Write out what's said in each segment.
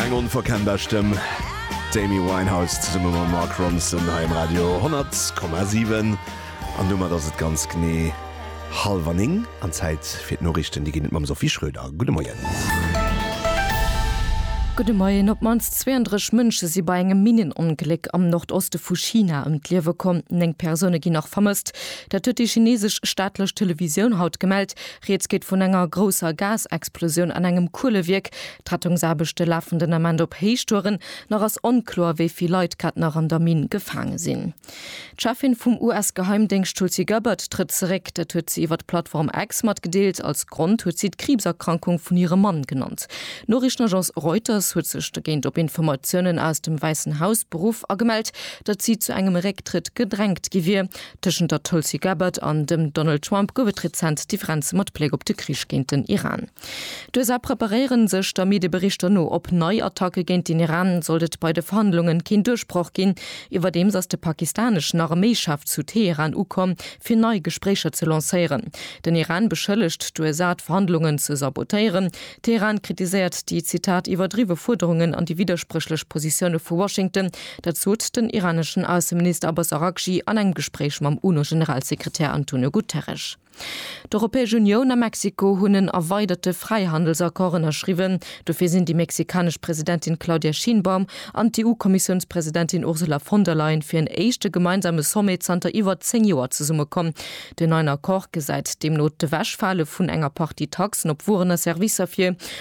Eng onverkennbar Stëmm, d'Amy Winehouse zesumme mam Mark Ronson hei um Radio 100,7. An domat ass et ganz genee hallwer néng an Zäit fir d'Noriichten. Déi ginn et mam Sophie Schröder. Gudde Moien. Gudde Moien. Op d'mannst 32 Mënsche si bei engem Minnenongléck am Nordoste vu China ëm d'Liewe komm. Néng Persoune ginn nach vermësst. Dat huet déi chinesesch staatlech Televisioun haut gemellt. Rieds geet vun enger grousser Gasexplosioun an engem Kuelewierk. D'Rettungsaarbechte lafen den Ament op Héichtouren. Nach ass onkloer, wéi vill Leit grad nach an der Minn gefaange sinn. D'Cheffin vum US-Geheimdéngscht Tulsi Gabbard trëtt zeréck. Dat huet si iwwer d'Plattform X matgedeelt. Als Grond huet si d'Kriibserkrankung vun hirem Mann genannt. D'Noriichtenagence Reuters huet sech dogéint op Informatiounen aus dem Wäissen Haus beruff a gemellt, datt si zu engem Récktrëtt gedrängt gi wier. Tëschent der Tulsi Gabbard an dem Donald Trump gouf et rezent Differenze mat Bléck op de Krich géint den Iran. D'USA preparéieren sech der Medieberichter no op nei Attacke géint den Iran, sollt et bei de Verhandlungen keen Duerchbroch ginn. Iwwerdeems ass de pakistaneschen Arméichef zu Teheran ukomm, fir nei Gespréicher ze lancéieren. Den Iran beschëllegt d'USA, d'Verhandlungen ze sabotéieren. Teheran kritiséiert déi, Zitat, iwwerdriwwe Fuerderungen an déi widderspréchlech Positioune vu Washington, Dat sot den iraneschen Ausseminister Abbas Araghchi an engem Gespréich mam UNO-Generalsekretär Antonio Guterres. D'Europäesch Unioun a Mexiko hunn en erweiderte Fräihandelsaccord ënnerschriwwen. Dofir sinn déi mexikanesch Presidentin Claudia Sheinbaum an d'EU-Kommissiounspresidentin Ursula von der Leyen fir en éischte gemeinsame Sommet zanter iwwer zéng Joer zesummekomm. Den neien Accord gesäit deemno d'Ewechfale vun enger Partie Taxen op Wueren a Servicer vir,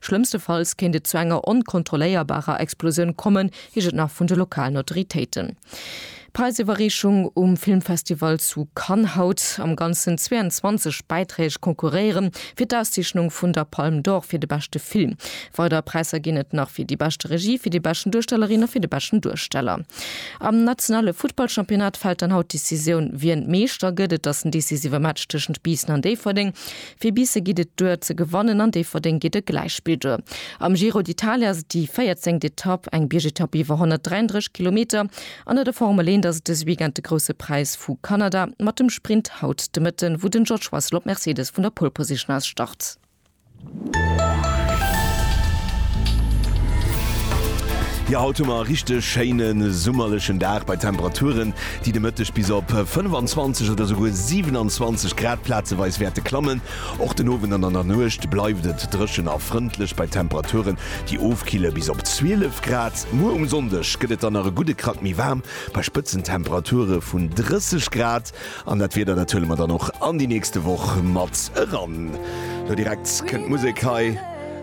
Schlëmmstefalls kéint et zu enger onkontrolléierbarer Explosioun kommen, heescht et nach vun de lokalen Autoritéiten. D'Präisiwwerreechung um Filmfestival zu Cannes haut. Am Ganzen 22 Bäiträg konkurréiere fir d'Auszeechnung vun der Palme d'Or fir de beschte Film. Weider Präisser ginn et nach fir déi beschte Regie, fir déi beschten Duerstellerin a fir de beschten Duersteller. Am nationale Futtballchampionnat fält dann haut d'Decisioun, wien Meeschter gëtt. Et ass den decisive Match tëschent Biissen an Déifferdeng. Fir Biisse geet et duer ze gewannen, an Déifferdeng geet e Gläichspill duer. Am Giro d'Italia ass et déi 14. Etapp, eng Biergetapp iwwer 133 Kilometer, an der de Formel 1 ass et dëse Weekend de Grousse Präis vu Kanada mat dem Sprint haut de Mëtten, wou den George Russell op Mercedes vun der Pole Position aus start. Jo, haut hu mer e richteg schéine summerlechen Dag bei Temperaturen, déi de Mëtteg bis op 25 oder souguer 27 Grad plazeweis wäerte klammen. Och den Owend an an der Nuecht bleift et dréchen a frëndlech bei Temperaturen, déi ofkille bis op 12 Grad. Muer um Sonndeg gëtt et dann nach e gudde Krack méi waarm, bei Spëtzentemperature vun 30 Grad. An dat Wieder, dat huele mer dann och an déi nächste Woch mat eran. Lo direkt kënnt d'Musek hei.